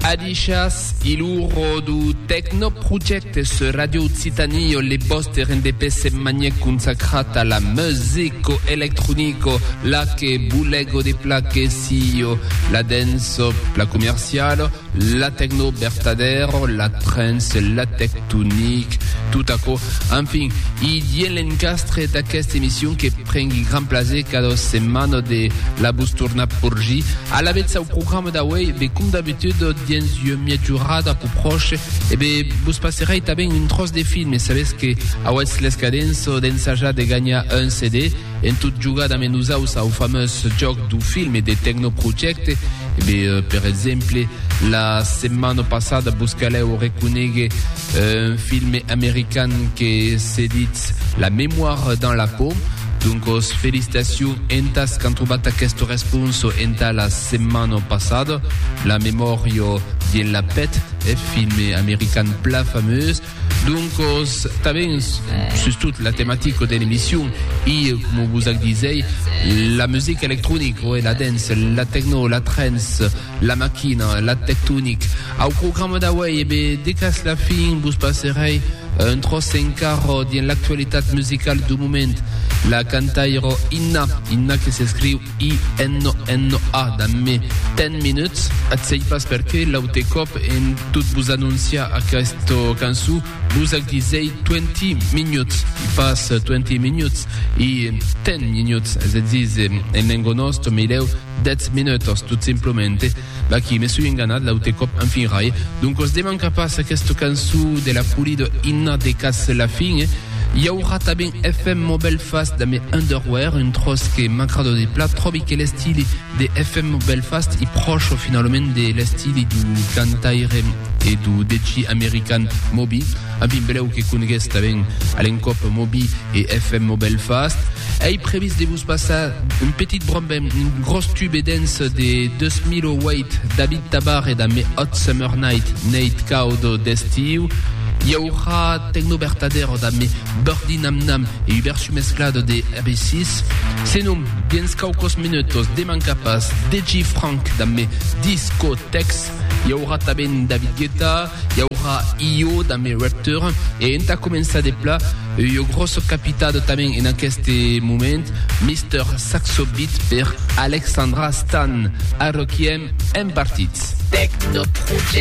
Adishas iluro du tecno projecte sur Radio Occitanie io le boste rendepè semmanièc consacrat a la musico electronico la que bulego de pla que sio la denso la comercialo la tecno bertadero la trens la tectonic tot aquò enfin i dien l'encastre d'aquesta emission que Prengui grand plaser cada setmana de la vos tornar porgir alavetz au programa d'auei, be com d'abitud dens ua miajorada pro pròche e be vos passerei tanben un tròç de film e sabetz que auetz l'escadença d'ensajar de ganhar un CD en tot jogar damb nosaus au fameus jòc dau film e de Tecnoprojecte e be per exemple la setmana passada vos calèu reconéguer Un filme american que se ditz La mémoire dans la peau. Doncos, felicitacions entas qu'an trobat aqueste responso entà la setmana passada. La memòria dins la pet, eth filme american plan fameus. Doncos, tanben, sustot la tematica de l'emission, i, coma vos ac disèi, la musica electronica, la dance, la techno, la trance, La maquina, la tectonic. Au programa d'auei e be decas la fin vos passerei un tròç en carro dins l'actualitat musicala du moment. La cantairo Inna, Inna que s'escriu I-N-N-A damb me 10 minuts. Ath sei pas perqué l'aute còp en tot vos anonciar aquesta cançon vos ac disei 20 minuts e pas 20 minuts e 10 minuts, es a díser en lengo nòsta, me lèu Dètz minutas, tot simplemente. Vaquí, me soi enganat l'aute còp en fin rai. Doncas de mancar pas aquesta cançó de la Pulido Inna de Cas Lafin, i aurà tanben FM Mobelfast damb Underwear, un tròç que m'agrada de plat, tròbi que l'estili de FM Mobelfast i pròche finalament de l'estili dau cantaire e dau DJ american Moby. A mi blèu que congues tanben a l'encòp Moby e FM au Belfast. Ei previst de vos passar un petit brombem, un gros tube dens de 2008 David Tabar e damb Hot Summer Night, Neit Caudo d'Estiu. I aurà Tecno Bertadero damb Birdie Nam Nam e Hubert Sumesclado de RB6. Senon, dens quauquos minutos, deman cap as DJ Frank damb Discotex. I aurà tanben David Guetta, i aurà Io damb e Rapture, e entà començar de pla, ua gròssa capitado tanben en aqueste moment, Mister Saxo Beat per Alexandra Stan, a Requiem en partits. Tecnoproject.